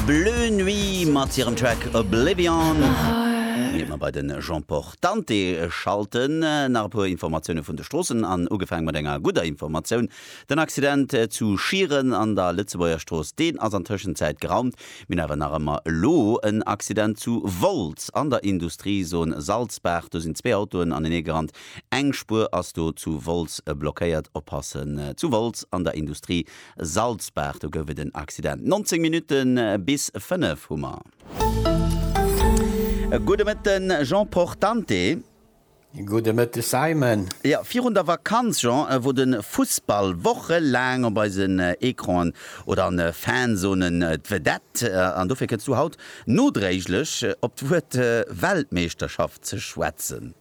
Bleu Nuit mat hirem Track Oblivion. Ier mer bei de Jean-Port Dante schalten, nach e puer Informatioune vun de Stroossen an ugefaang mat enger gudder Informatioun, Den Accident zu Schieren an der Lëtzebuerger Strooss, deen ass an Tëschenzäit geraumt. Mir hunn awer nach ëmmer elo en Accident zu Wolz an der Industriezone Salzbaach. Do sinn zwee Autoen anenee gerannt, eng Spuer ass do zu Wolz blockéiert. Oppassen zu Wolz an der Industrie, Salzbaach, do gouf et en Accident. 19 Minutte bis 5 hu mer. Gudde Mëtte Jean Portante. Gudde Mëtte Simon. Jo, virun der Vakanz Jean, wor de Fussball wochelaang op eisen Ecranen oder an de Fanzonen d'Vedette an dofir kënns du haut nodréiglech op d'Wuert Weltmeeschterschaft ze schwätzen.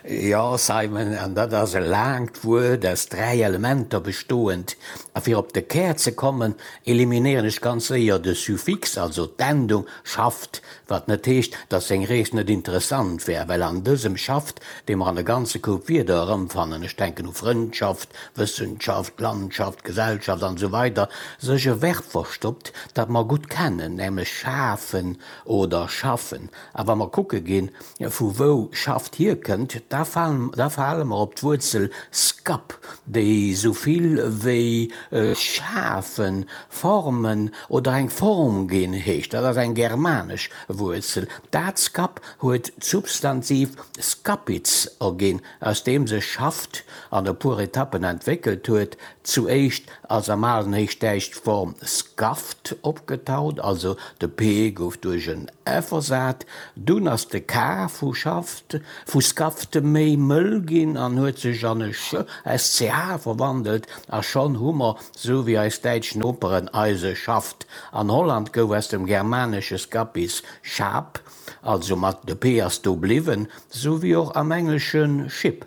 Jo, Simon, an dat ass e laangt Wuert aus dräi Elementer bestoend. A fir op de Kär ze kommen, eliminéieren ech ganz séier de Suffix, also d'Endung, schafft, wat net heescht, datt seng Rees net interessant wär, well an dësem schafft, dee mer an e ganze Koup Wierder erëmfannen, ech denken u Frëndschaft, Wëssenschaft, Landschaft, Gesellschaft an esou weider, sech e Verb verstoppt, dat mer gutt kennen, nämlech schafen oder schaffen. A wa mer kucke ginn, vu wou Schaft hierkënnt, da fale mer op d'Wuerzel skap, déi esou vill wéi schafen, formen oder eng Form ginn heescht. Dat ass eng germanesch Wuerzel. Dat skap huet d'Substantiv skapitz erginn, aus deem sech Schaft an e puer Etappen entwéckelt huet, zu éischt ass am alen Héichdäitsch d'Form scaft opgetaucht, also de p gouf duerch en f ersat. Dunn ass de k vu schaft, vu scaft, méi mëll ginn an huet sech an e ch, sch, verwandelt, a schonn hu mer, sou wéi eis däitsch Noperen, eise Schaft. An Holland gouf aus dem germanesche scapis schaap, also mat de p ass do bliwwen, sou wéi och am englesche ship.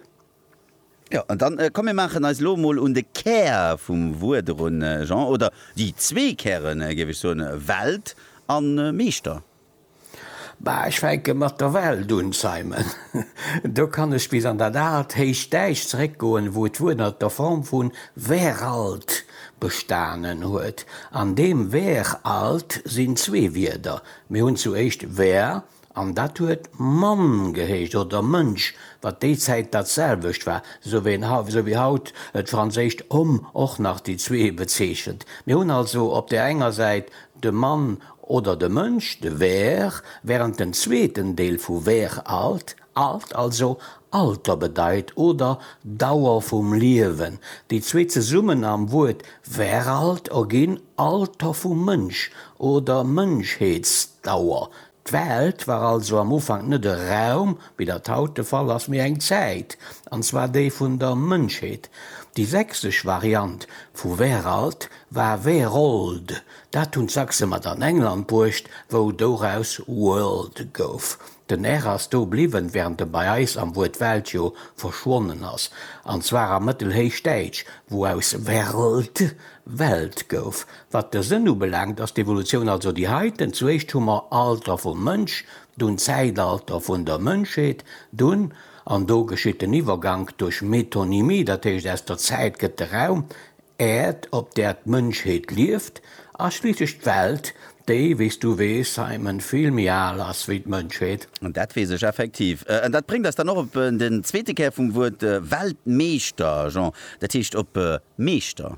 Jo, an dann, komm mir maachen eis elo emol un de Kär vum Wuert erun, Jean, oder déi zwee Kären, géif ech soen, Welt a Meeschter. Bah, ech fänke mat der Welt un, Simon. Do kann ech bis an dat aalt héicht Däich zeréckgoen, wou d'Wuert ënnert der Form vu weralt bestanen huet. An deem weralt sinn zwee Wierder, mir hunn zu éischt wer An dat huet Mann geheescht, oder Mënsch, wat déi Zäit dat selwecht war, esou wéi haut d'franséischt homme och nach déi zwee bezeechent. Mir hunn also op där enger Säit de Mann oder de Mënsch, de Ver, wärend den zweeten Deel vu Ver alt, alt also Alter bedeit oder Dauer vum Liewen. Déi zwee zesummen am Wuert Veralt erginn Alter vum Mënsch oder Mënschheetsdauer. D'Welt war also am Ufank net e Raum, wéi dat haut de Fall ass, mee eng Zäit, an zwar déi vun der Mënschheet. Déi sächsesch Variant vu Weralt war Werold, dat hunn d'Sachse mat an England bruecht, wou doraus world gouf. Den r ass do bliwwen, während e bei eis am Wuert Welt jo verschwonnen ass, an zwar am Mëttelhéichdäitsch, wou aus werld Welt gouf. Wat de Sënn ubelaangt, ass d'Evolutioun also déi heiten, Zuéischt hu mer Alter vum Mënsch, dunn Zäitalter vun der Mënschheet, dunn, an do geschitt den Iwwergank duerch Metonymie, dat heescht aus der Zäit gëtt de Raum, Äerd, op där d'Mënschheet lieft, a schliisslech d'Welt, déi, wéi s du weess, Simon, vill méi al ass wéi d'Mënschheet. Dat weess ech effektiv. An dat bréngt eis dann och op den zweete Kär vum Wuert Weltmeeschter, Jean, dat heescht op Meeschter.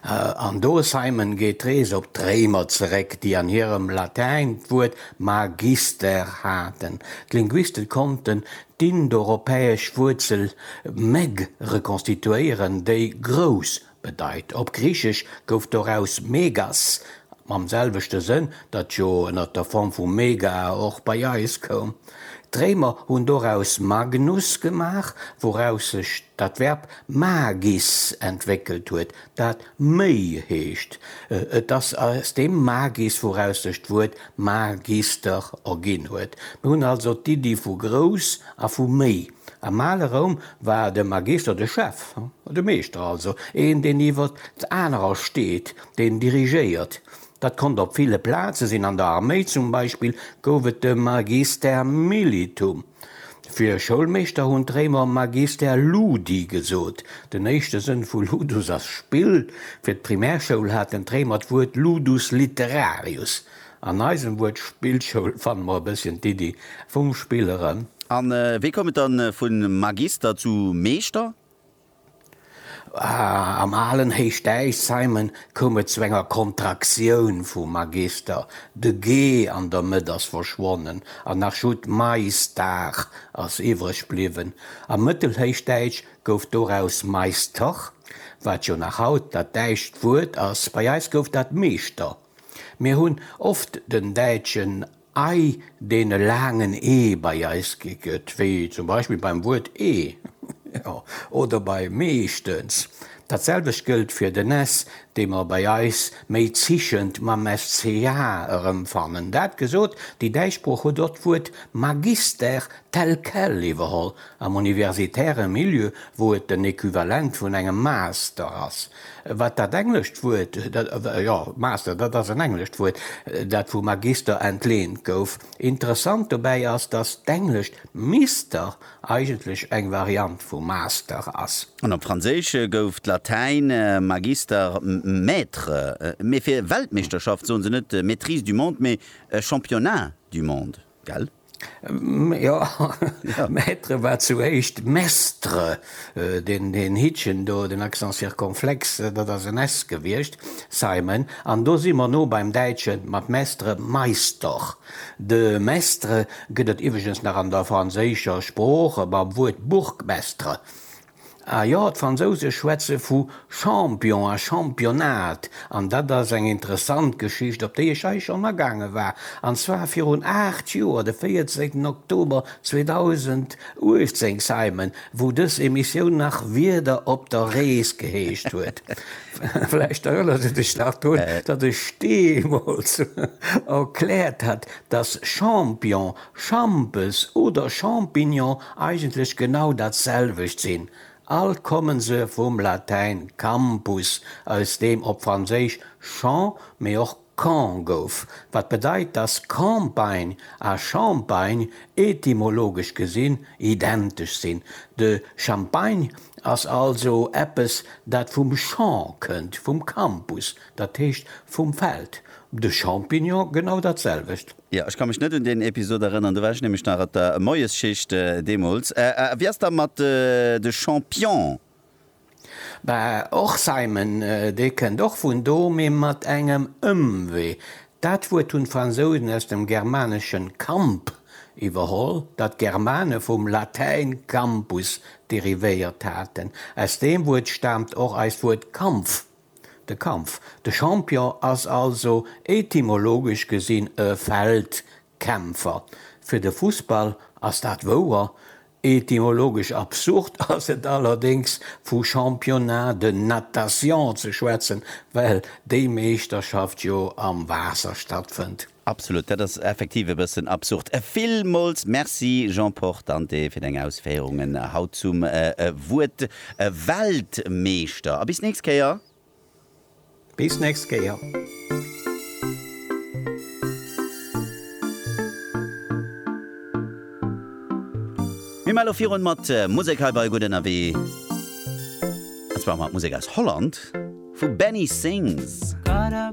An do, Simon, geet d'Rees op d'Réimer zeréck, déi an hirem Latäin d'Wuert magister haten. D'Linguiste konnten d'indoeuropäesch Wuerzel meg rekonstituéieren, déi grouss bedeit. Op Griichesch gouf doraus megas, mam selwechte Sënn, dat jo ënner der Form vu mega och bei eis koum. D'Réimer hunn doraus magnus gemaach, wouraus sech dat Verb Magis entwéckelt huet, dat méi heescht. Et ass aus deem Magis, wouraus sech d'Wuert Magister erginn huet. Mir hunn also d'Iddi vu grouss a vu méi. Am ale Roum war de Magister de Chef, de Meeschter also, een, deen iwwer anerer steet, deen dirigéiert. Dat konnt op ville Plaze sinn, an der Arméi zum Beispill gouf et de Magister militum. Fir Schoulmeeschter hunn d'Réimer magister ludi gesot. Den éischte Sënn vu ludus ass Spill. Fir d'Primärschoul haten d'Réimer d'Wuert ludus literarius. An eisem Wuert Spillschoul fanne mer e bësschen d'Iddi vum Spill eran. A wéi koum et dann vu magister zu meeschter? Am alen Héichdäich, Simon, koum et zu enger Kontraktioun vum Magister, de ge an der Mëtt ass verschwonnen an nach just d'Maistar ass iwwreg bliwwen. Am Mëttelhéichdäitsch gouf doraus Meister, wat jo nach haut dat däitscht Wuert ass. Bei eis gouf dat Meeschter. Mir hunn oft den däitschen. Ei deene laangen e bei eis gi gëtt, wéi zum Beispill beim Wuert ee oder bei meeschtens. Datselwecht gëllt fir den s, dee mer bei eis méi zichend mam SCH erëmfannen. Dat gesot, déi däitsch Sprooch huet och d'Wuert Magister tel quel iwwerholl am universitäre Milieu, wou et den Equivalent vun engem Master ass. Wat dat englescht Wuert, jo, Master, dat ass en englescht Wuert, dat vu Magister entlehnt gouf. Interessant dobäi ass, dass d'englescht Mister eigentlech eng Variant vu Master ass. An op Franséisch gouf d'Latäin Magister Maître. Mee fir Weltmeeschterschaft soen se net Maîtrise du monde, mee Championnat du monde. gell? Jo, Maître war zu éischt Mestre. Deen Hittchen do, den Accent circonflexe, dat ass en s gewiescht, Simon. An do si mer no beim Däitschen mat Mestre, Meister. De Mestre gëtt et iwweregens nach an der franséischer Sprooch mam Wuert Bourgmestre. Ah jo, d'Fransouse schwätze vu Champion a Championnat, an dat ass eng interessant Geschicht, op déi ech hei schonn agaange war, an zwar virun aacht Joer, de 14 Oktober 2018, Simon, wou dës Emissioun nach Wieder op der Rees geheescht huet. Vläicht erënners du dech nach drun, datt ech deemools erkläert hat, datt Champion Schampes oder Champignon eigentlech genau dat selwecht sinn, alt komme se vum Latäin campus, aus deem op Franséisch champ, mee och camp gouf, wat bedeit, dass Campagne a Champagne etymologesch gesinn identesch sinn. De Champagne ass also eppes, dat vum champ kënnt, vum campus, dat heescht vum Feld, de Champignon genau dat selwecht. Jo, ech ka mech net un deen Episod erënneren, do war ech nämlech nach op der Moiesschicht deemools. A wéi ass da mat de Champion? Bah, och Simon, dee kënnt och vun do, mee mat engem Ëmwee. Dat Wuert hunn d'Fransousen aus dem Germaneschen camp iwwerholl, dat d'Germane vum Latäin campus derivéiert haten. Aus deem Wuert staamt och eist Wuert Kampf. De Kampf, de Champion ass also etymologesch gesinn e Feldkämpfer. Fir de Fussball ass dat wouer, etymologesch absurd ass et allerdéngs vu Championnat de natation ze schwätzen, well déi Meeschterschaft jo am Waasser stattfënnt. Absolut, dat ass effektiv e bëssen absurd. Villmools Merci, Jean Portante, fir deng Ausféierungen haut zum Wuert Weltmeeschter. A bis nächst Kéier! Bis nächst Kéier! Mir man elo virun mat Musek hei bei Gutt Ënnerwee, an zwar mat Musek aus Holland vu Benny Sings.